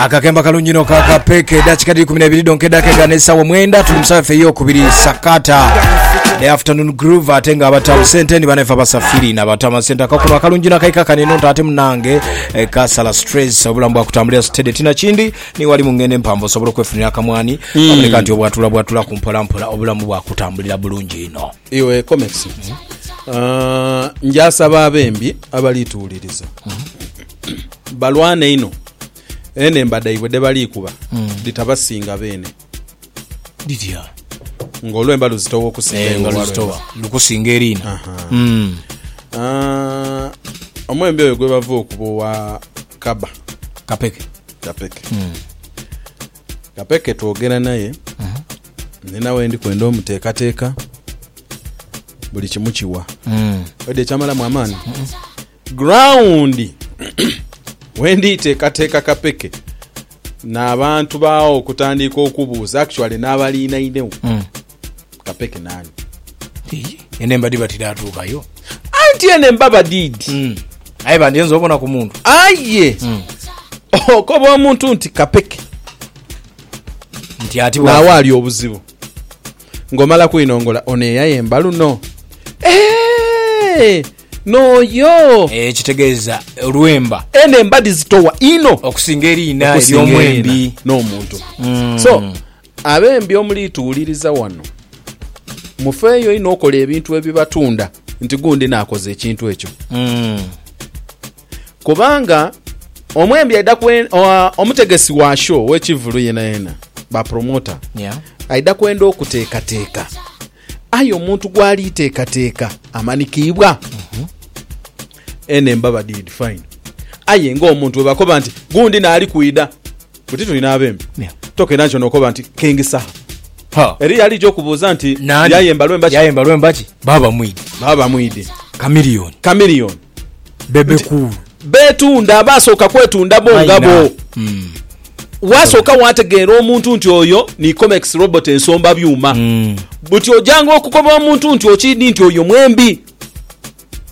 akakemba kalungi no kakapeka edakika dhiri kumi nebiri donka edaka egana esawa mwenda tuli musawa efe eyokubiri sakata the afternoon groove ate nga abatamu sente ni banaife abasafiri nabatama sente akakuno akalungi nakaika kaneno nti ate munange eh, kasala stress obulamu bwakutambulira sitede tina kindi niwali mu ngendo empanvu osobola okwefunira akamwani aboneka nti obwatula bwatula ku mpolampola obulamu bwakutambulira bulungi ino Iwe Comex, ah, njasaba abembi abalituwuliriza balwane inho enemba dhaibwe dhebalikuba dhitabasinga beene Dhitya? nga olwemba luzitowa okusinga Eh, iwe nga olwalwemba. luzitowa lukusinga eriina. Aha. Mm. Ah, omwembi oyo gwebava okuba owa kaba Kapeke. kapeke Kape ke twogera naye, ni nawe ndi kwenda omuteekateeka buli kimu kiwa. Oidhi ekyamalamu amaani? Ground we nditeekateeka Kapeke n'abantu baao okutandiika okubuuza actually n'abaliinainegho. Kapeke nani? Ii, Eno embadi batidatuukayo. Anti eno emba badiidi. Mm. Aye bandyenze obona ku muntu. Aye Mm. okoba omuntu nti kapeke Nti ati bwa- naawe ali obuzibu ng'omala kwinongola ono eyayemba luno Eh, n'oyo Eh, ekitegeeza olwemba eno embadi zitowa ino okusinga eriina okusinga ery'omwembi. erina n'omuntu so Abembi omuli tuwuliriza wano, mufeeyo inho okola ebintu ebibatunda nti gundi naakoze ekintu ekyo. Kubanga omwembi aidha kwe- oa- omutegesi wa show ow'ekivulu yenayena, ba promoter, Yeah. aidha kwenda okuteekateeka. Aye omuntu gw'ali teekateeka amanikiibwa. Eno emba badidifayina. Aye ng'omuntu bwe bakoba nti gundi naali kwidha. Buti tuli n'abembi. Toka era nkyo n'okoba nti, Kengisaha. Ha. Eriyo alija okubuuza nti, Naani? Yaye mbalwa embaki? Yaye mbalwa embaki? Baaba mwidhi. Baaba mwidhi. Kamiliyoni. Kamiliyoni. Bebe kuulu. Beetunda, baasooka kwetunda bo nga bo. Mm. Waasooka waategeera omuntu nti oyo ni Comex robot ensomba byuma. Mm. Buti ojanga okukoba omuntu nti okiidhi nti oyo mwembi.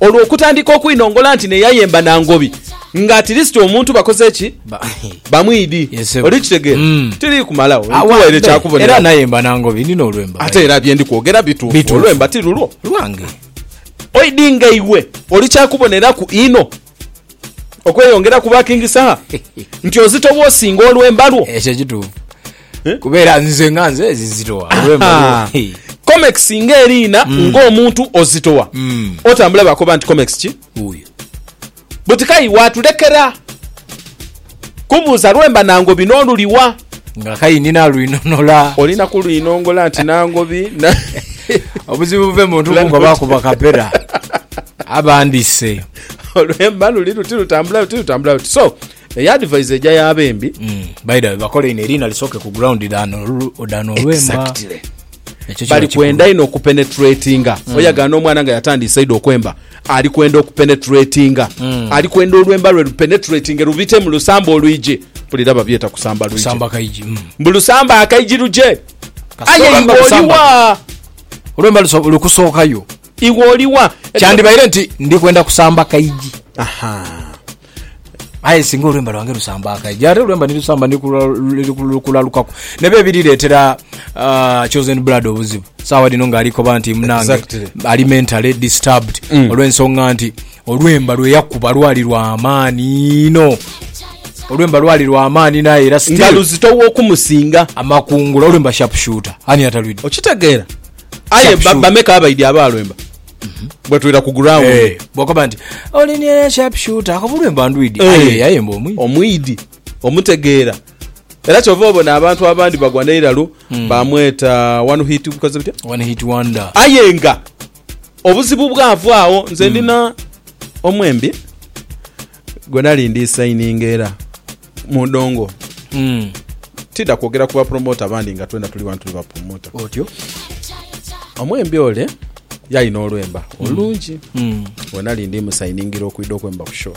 Olwo okutandika okwinongola nti n'eyayemba na ngobi nga atilisiti omuntu bakoze ki? Bamwidi. Oli kitegeera? Tili kumalagho, nkuwaire kya kuboneraku. Era nayemba na ngobi, ndina olwemba. Ate era bye ndi kwogera bituufu, olwemba ti lulwo. Lwange. Oidi nga iwe oli kya kuboneraku inho. Okweyongera ku ba King Saha nti ozito bwo osinga olwemba lwo. Ekyo kituufu. Eh? Kuba era nze nga nze ezizitowa olwemba lwo. Comex nga eriina mm. nga omuntu ozitowa. Mm. Otambula bakoba nti Comex ki? Uyo. Butikayi watulekera. Kubuuza lwe mba nangobi n'oluliwa. Nga kayi ni nalwinonola. Oli na kulwinongola nti nangobi na. Obuzibu buve mu ntu kungoba kuba kapera abandise. Olwe mba luli luti lutambula luti lutambula luti. So eyo advise eja yaba embi. Mm. By the way bakole ino eriina lisooke ku ground dano dano olwemba. Exactly. Ekyo kiba bali kikulu. kwenda inho okupenetratinga oyagana omwana nga yatandiise idho okwemba ali kwenda okupenetratinga ali kwenda olwemba lwe lupenetratinge lubite mu lusamba olwije mpulira babyeta kusamba lwije Samba kaiji. Mm. mbu lusamba akaiji luje Kasita aye olwemba iwe lusamba. oliwa Olwemba luso- lukusookayo. iwe oliwa Kyandibaire nti ndi kwenda kusamba kaiji. Aha. Aye singa olwemba lwange lusamba akaija, ate olwemba nilusamba nilukulalukaku, nebe ebirireetera uh, chosen blood obuzibu saawa dino nga alikoba nti munange Exactly. ali mentally disturbed Mm. olw'ensonga nti olwemba lweyakuba lwali lwa amaani ino olwemba lwali lwa amaani naye era nga still luzitowa okumusinga amakungula olwemba sharpshooter ani atalwidde okitegeera aye Sharp ba- shoot. bameka abaidi abaalwemba bwetwira ku ground eh, bwakoba nti olinira sharp shooter akobulwe mba ndwidi eh. aye aye mba omwidi omwidi omutegeera era kyova obona abantu abandi bagwa neiralo mm. bamweta one hit because bitya one hit wonder aye nga obuzibu bwavaawo nze mm. ndina omwembi gwe nali ndi sayininga era mudongo tidha kwogera ku bapromota abandi nga twena tuli wano tuli bapromota Otyo. omwembi ole yalina olwemba olungi gwe nali ndi musayiningira okwidha okwemba ku show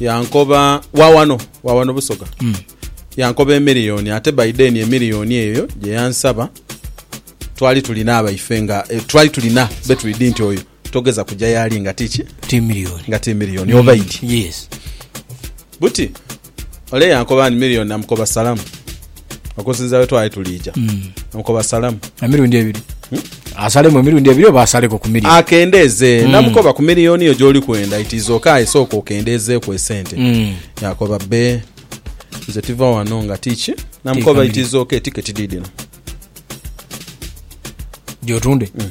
yankoba wawano wawano busoga yankoba emiliyoni ate by then emiliyoni eyo gye yansaba twali tulina abaife nga eh, twali tulina betwidi nti oyo Togeza kuja yaali nga ti ki? Ti milioni. Nga ti milioni. Mm. Obaidi. Yes. Buti, ole yankoba ni milioni namukoba salamu. Okusinza we twali tuliija. Mm. Namukoba salamu. Emirundi ebiri. Hmm? Asalemu emirundi ebiri oba asaleko ku milioni? Akendeeze. Mm. Namukoba ku milioni yo gyoli kwenda. It is okay. Isooka okendeezeeku esente. Mm. Yakoba be. Nze tiva wano nga ti ki? Namukoba it is okay. Tiketi didino. Gyotunde? Mm.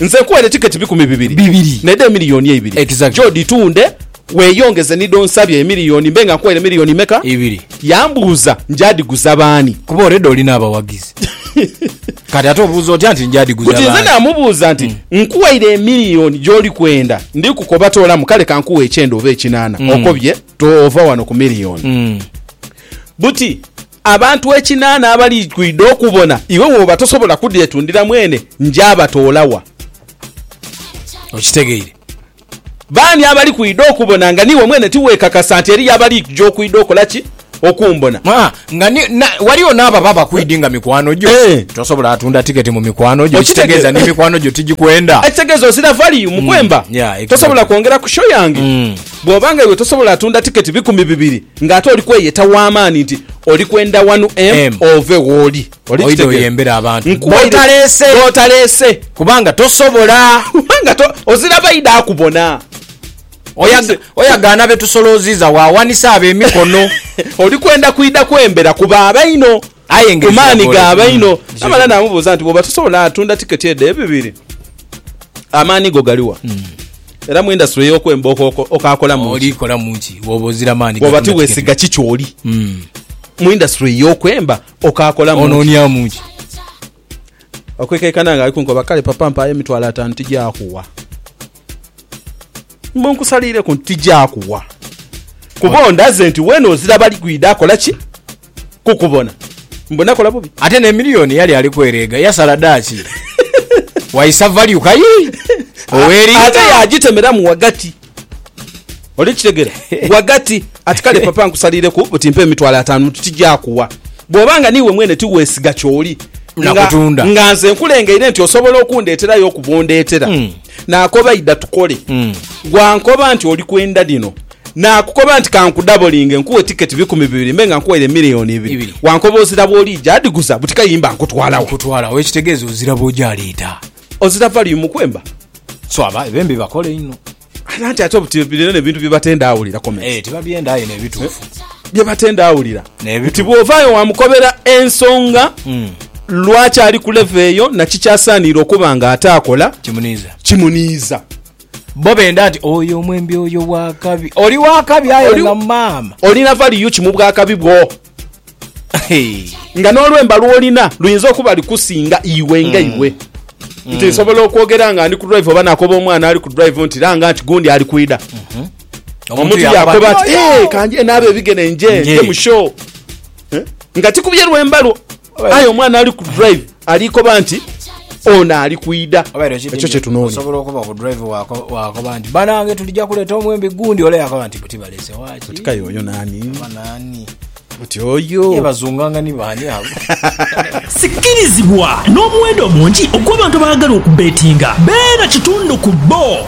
Nze nkuwa edh'etiketi ebikumi bibiri. Bibiri. N'edh'emiliyoni eibiri. Exactly. Jo dhitunde, weeyongeze ni dh'onsabye emiliyoni mbe nga nkuwaire miliyoni meka? Ibiri. Yambuuza njaadhiguza baani. Kuba already olina abawagizi. Kati ate obuuza otya nti njaadhiguza baani? Buti nze naamubuuza nti, Nkuwaire emiliyoni gy'oli kwenda, ndi kukoba toolamu kale ka nkuwe ekyenda oba ekinaana. Okobye? Toova wano ku miliyoni. Buti Abantu ekinaana abali kwidha okubona iwe woba tosobola kudhetundira mwene, njabatoola wa? Okitegeire? Baani abali kwidha okubona nga niiwe mwene tiweekakasa nti eriyo abali kuja okwidha okola ki? Okumbona. Aa, nga ni, na, ghaligho n'abo ababa bakwidhi nga mikwano gyo. Eeh. Tosobola atunda tiketi mu mikwano gyo, ekitegeeza ni Okitegeera? mikwano gyo tigikwenda. Ekitegeeza ozira value mu kwemba. Yeah, exactly. Tosobola kwongera ku show yange? Mm. Bw'oba nga iwe tosobola atunda tiketi bikumi bibiri, Nga ate oli kweyeta wa maani nti oli kwenda wanu em ove wooli. Oli Oidha kitegera. oyembere abantu Nkuwaire b'otaleese. b'otaleese. Kubanga tosobola. Kubanga to, ozira baidha akubona. Oya, Oli- oyagaana be tusolooziiza waawanisa abo emikono. Oli kwenda kwidha kwembera ku ba baino. ku maani gaaba inho. Amala naamubuuza nti, Bw'oba tosobola tunda tiketi edho ebibiri, amaani go gali wa? Era mu indasitule y'okwemba okaakolamu ki? Bw'oba tiweesiga ki ky'oli mu indasitule y'okwemba okaakolamu ki? Okwekaikana nga ali kunkoba, kale papa mpaayo emitwalo ataanu tijakuwa. Mbu nkusaliireku nti tijakuwa kuba ondaze nti weena ozira bali kwidha kola ki? Kukubona. Mbu nakola bubi? Ate n'emiliyoni yali ali kwereega yasala dha ki? Waisa value kayi? Ow'eringa. Ate yagitemeramu ghagati. Oli kitegera wagati ati kale papa nkusalireku buti mpa emitwalo atanu tuti gyakuwa bwoba nga niiwe mwene tiwesiga kyoli nga, nga nze nkulengeire nti osobola okundeterayo okuva ondetera hmm. nakoba ida tukole hmm. gwankoba nti oli kwenda lino nakukoba nti kankudabolinge nkuwe tiketi bikumi bibiri mbe nga nkuwaire miliyoni ibiri wankoba ozira bwolija adiguza buti kayimba nkutwalawo nkutwalawo ekitegeeza ozira bwoja aleeta Ozira value mukwemba so aba ebembi bakole inho. Nanti ate obuti bino nebintu byebatenda awulira comment. Eeh tibabyenda aye nebituufu. Byebatenda awulira nti bwovayo wamukobera ensonga lwaki ali ku level eyo na kiki asaaniire okuba nga ate akola kimuniiza. Bo benda nti oyo omwembi oyo wakabi. Oli wakabi aye nga maama. Olina value ki mubwakabi bwo? Nga n'olwemba lw'olina luyinza okuba lukusinga iwe nga iwe. Nti nsobola okwogera nga ndi ku drive oba nakoba omwana ali ku drive nti langa nti gundi ali kwidha. Omuntu yakoba ati, Ee, kanjende abe ebigere nje nje mu show. Nga tikubye lwemba lwo. Aye omwana ali ku drive ali koba nti ono ali kwida. Ekyo kyetunoonya. Osobola okuba ku drive wakoba nti banange tulija kuleta omwembi gundi ole yakoba nti buti balese waki. Buti kayo oyo nani? Banani? Buti oyo. Ye bazunganga ni bani abo. Sikirizibwa n'omuwendo omungi ogw'abantu abaagala okubeetinga beera kitundu ku bbo.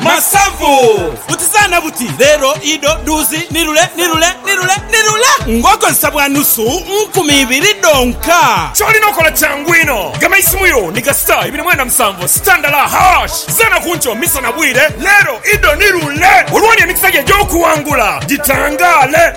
Masavu! Butizaana buti, leero, idho, dhuuzi, ni lule, ni lule, ni lule, ni lule! Ng'okozesa bwa nusu nkumi ibiri dhonka. Ky'olina okola kyangu inho, gema eisimu yo ni ga star ibiri mwenda musanvu star ndala hash. Zaana ku nkyo, misa na bwire, leero, idho, ni lule! Olwo ni emikisa gyo egy'okuwangula gitangaale.